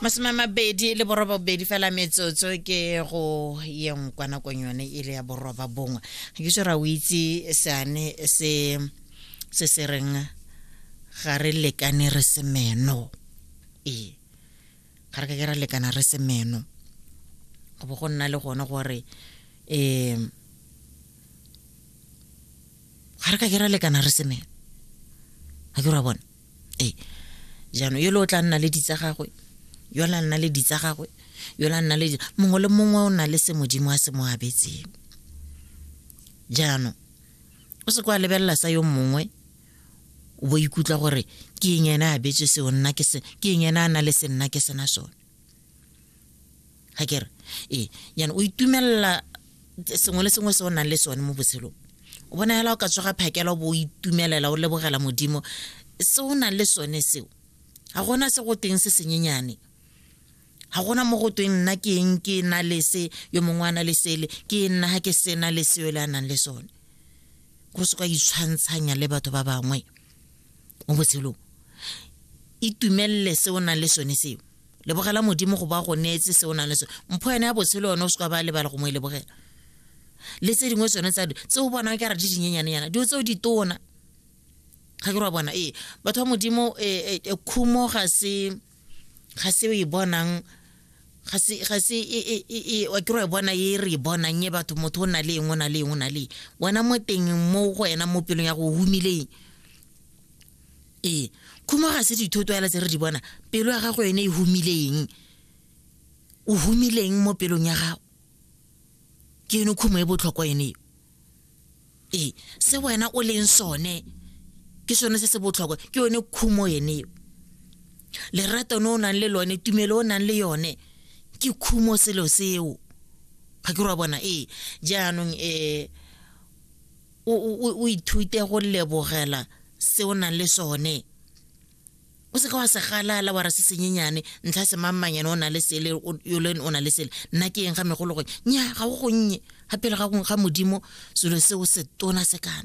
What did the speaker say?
masome a mabedi le borobabedi fela metsotso ke go yeng kwa nakong yone e le ya boroba bongwe ga ke sera o itse seane se se se reng ga re lekane re se meno ee ga re ka ke ra lekana re se meno go bo go nna le gone gore um ga re ka ke ra lekana re se meno ga ke ra bone ee jaanong yole o tla nna le ditsa gagwe yole a nna le ditsa gagwe yole a nna le mongwe le mongwe o na le se modimo a se mo abetseng jaanong o se kwa lebelela sa yo mongwe o bo ikutlwa gore ke eng ene a betswe seo nna ke eng ene a na le se nna ke sena sone ga kere ee yana o itumelela sengwe le sengwe se o nang le sone mo botshelong o bona fela o ka tsoga phakela o bo o itumelela o lebogela modimo se o nang le sone seo ga gona se go teng se senyenyane ga gona mo go tweng nna ke eng ke na le se yo mongwe a na le sele ke nna ga ke sena le seo le a nang le sone go se ka itshwantshanya le batho ba bangwe mo botshelong itumelele se o nang le sone seo lebogela modimo go ba go neetse se o nang le sone mpho yone ya botshelo yone o se ka ba lebala go mo e lebogela le tse dingwe tsone tsa tse o bonang ka re di dinyenyanenyana dilo tseo di tona ga ke re wa bona ee batho ba modimo e, e, e, khumo ga se ga se e bonang ga se ga se e e wa ke re bona e re bonang e batho motho o na le eng o na le eng o na le wena mo teng mo go wena mo pelong ya go humileng ee khumo ga se dithoto ela tse re di bona pelo ya gago yone e humileng o humileng mo pelong ya gago ke yone khumo e botlhokwa yone eo ee se wena o leng sone ke sone se se botlhokwa ke yone khumo yone eo lerato ne o nang le lone tumelo o nang le yone ke khumo selo seo ga ke re wa bona ee jaanong um o ithute go lebogela se o nang le sone o seka wa se galala wa ra se senyenyane ntlha se mammanyane o na le sele yolen o na le sele nna ke eng ga megolo gore nya ga go gonnye ga pele ga modimo selo seo se tona se kana